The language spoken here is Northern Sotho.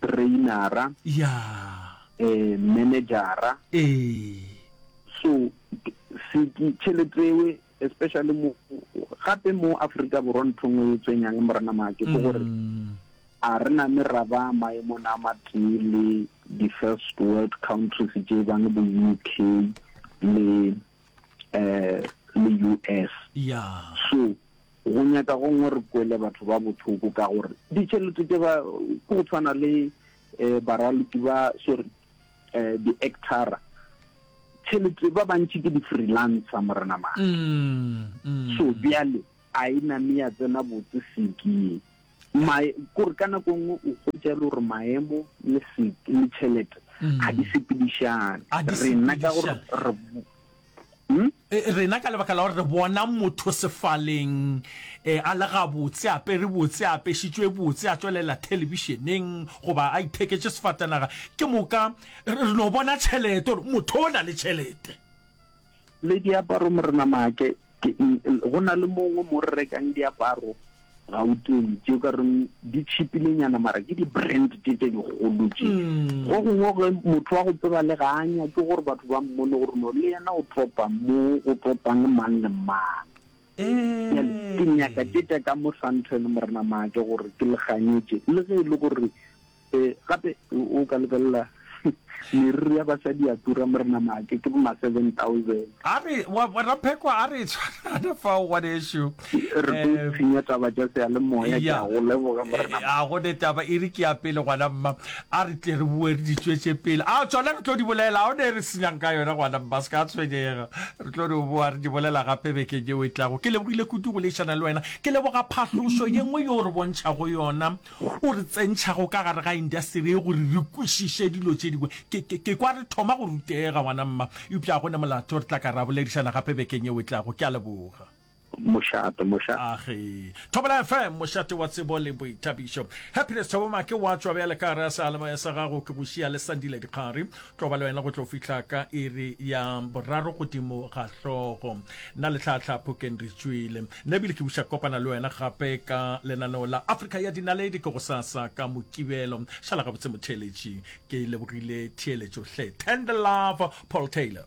trainera, manager-a. So tšhelete eo especially mo gape mo Afrika Borwa ntho ngwe e tswenyang morena make ke gore a re na me ra ba maemo na matee le di first world countries tse bang bo UK le um le US. Ya. So go nyaka gongwe re kwele batho ba bothoko ka gore ditšhelete tse ba ke go tshwana le um baraloki ba sorry um di-actora tšhelete ba bantši ke di-freelancer morena mane so bjale a e name ya tsena botse seke Mae, kore ka nako nngwe o hwetša e le gore maemo le se le tšhelete ga di sepedišane. A di Rena ka gore sepedišane. re bo- Hmm? E, rena ka lebaka la gore re bona motho sefaleng eh, a le gabotse a pere botse a apešitšwe botse a tšwelela thelebišeneng goba a itheketše sefatanaga ke moka re re no bona tšhelete gore motho o na le tšhelete Le diaparo Morena Maake, ke eng e, go na le mongwe mo re rekang diaparo Gauteng tše o ka reng di tšhipile nyana mara ke di brand tše tše dikgolo tše. Go gongwe ge motho wa go tseba le ga a nyake gore batho ba mmone gore no le yena o topa mo go topang mang le mang. Bjale ke nyaka tše tša ka mo Sandton Morena Maake gore ke le kganyetše le ge e le gore Ee, gape o ka lebelela meriri ya basadi ya tura mo re na maake ke bo ma seven thousand. A re wa bona phekwa a re tshwana fa o gone sho. Re tlo eh, tshinya taba tša se ya le moya ke a go leboga mo re na. Eh, a go ne taba e re ke ya pele gwana mma. A re tle re bue re di tšwetše pele. A tšona re tlo di bolela a o ne re senyang ka yona gwana mma se ka tshwenyega. Re tlo di boa re di bolela gape beke yeo e tlago. Ke lebogile kudu go leišana le wena. Ke leboga phahlošo ye nngwe yo re bontšhago yona. o re tsentšhago ka gare ga indasteri ye gore re kwešiše dilo tše dingwe. Ke, ke, ke kwa re thoma go rutega, ngwana mma. Eupša go ne molato, re tla ka ra boledišana gape bekeng yeo e tlago. Ke a leboga. Mošate, moša. A ge. Thobela FM, mošate wa tsebo le boithabišo. Happiness Thabo Make wa tšwa bjale ka gare ga sealemoya sa gago. Ke go šia le Sandile Dikgari. Tlo ba le wena go tlo fihla ka iri ya boraro godimo ga hlogo. Nna le Tlhatlha Phokeng re tšwile. Nna ebile ke buša kopana le wena gape ka lenaneo la Afrika ya Dinaledi ke gosasa ka Mokibelo. Šala gabotse motheeletši. Ke lebogile theeletšo hle. Tender love, Paul Taylor.